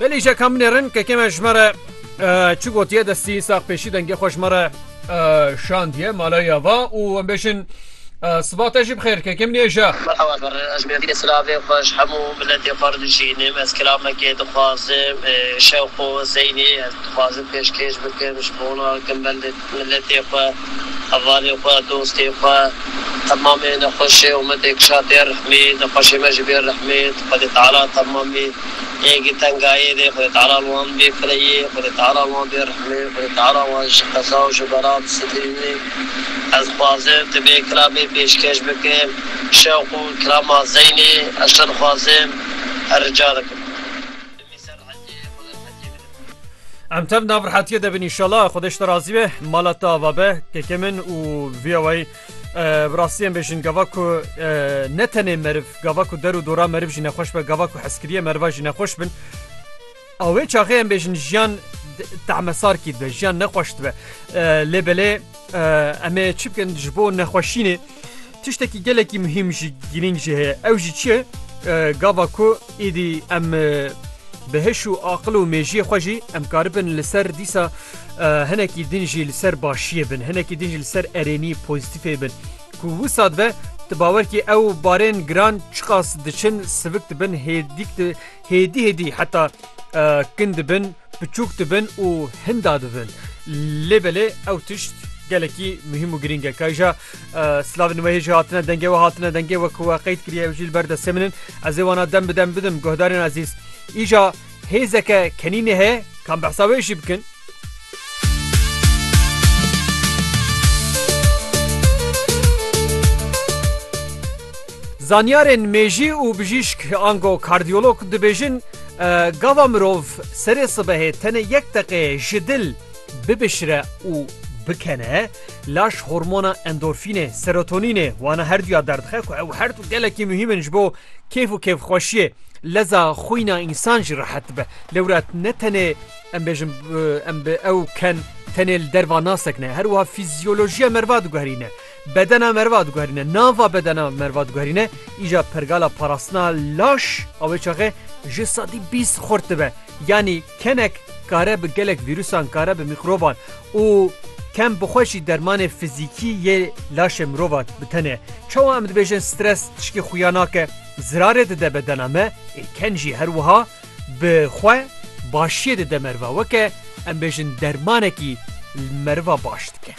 Belê îşe ka min ê rin kekê me ji me re çi gotiye destî sax pêşî dengê xwe ji me re şandiye malaya va û em bêjin siva te jî bixêr kekê min êja. Merhaba ber ez mêrdînê silavê xwe ji hemû miletê xwe re dijînim ez kilamekê dixwazim şewq û zeynê ez dixwazim pêşkêş bikim ji bona gimbelê Miletê xwe, hevalê xwe, dostê xwe, temamê nexweşê û me tê kişa tê rihmê, nexweşê me ji bê rihmê, Xwedê Teala temamê hêgî tengayê dê, Xwedê Teala li wan bê fireyê, Xwedê Teala li wan bê rihmê, Xwedê Teala wan ji qeza û ji bela bisetirînê. Ez dixwazim tu vê kilamê pêşkêş bikim, şewq û kirama Zeynê, ez çi dixwazim, her rica dikim. Em tev nav rehetiyê de bin inşallah Xwedê ji te razî be mala te ava be kekê min û viya wayî bi rastiyên bêjin gava ku ne tenê meriv gava ku der û dora meriv jî nexweş be gava ku heskiriye meriva jî nexweş bin a wê çaxê em bêjin jiyan tahmesar kî dibe jiyan nexweş dibe lê belê em ê çi bikin ji bo nexweşînê Tiştekî gelekî muhîm jî girîng jî heye ew jî çi gava ku êdî em bi hiş û aqil û mêjiyê xwe jî em karibin li ser dîsa hinekî din jî li ser başiyê bin hinekî din jî li ser erênî pozîtîfê bin ku wisa dibe tu bawer kî ew barên giran çiqas diçin sivik dibin hêdîk Hêdî hêdî heta kin dibin, piçûk dibin û hinda dibin. Lê belê ew tişt gelekî muhîm û girîng e. Kayja slavên wê hêjî hatine dengê we hatine dengê we ku we qeyd kiriye ew jî li ber destê min in. Ez ê wana dem bi dem bidim guhdarên ezîz. Îja hêzeke kenînê heye kan behsa wê jî bikin. Zanyarên mêjî û bijîşk ango kardiyolog dibêjin, Gava mirov serê sibehê tenê yek deqeyê ji dil bibişire û bikene, laş hormona endorfînê, serotonînê, wana her duya derdixe ku ew her du gelekî muhîm in ji bo kêf û kêfxweşiyê, leza xwîna însan jî rehet dibe. Lewra ne tenê. Em bêjin em bi ew ken tenê li derva nasek ne her wiha fîzyolojiya merva diguherîne. Bedena merva diguherîne nava bedena merva diguherîne îja pergala parastina laş a wê çaxê ji sedî bîst xurt dibe. Yanî kenek kare bi gelek vîrusan kare bi mîkroban û kem bi xwe jî dermanê fizîkî yê laşê mirova bi tenê. Çawa em dibêjin stres tişkî xuya nake zirarê dide bedena me ê ken jî her wiha Bi xwe başiyê dide meriva weke em bêjin dermanekî li meriva baş dike.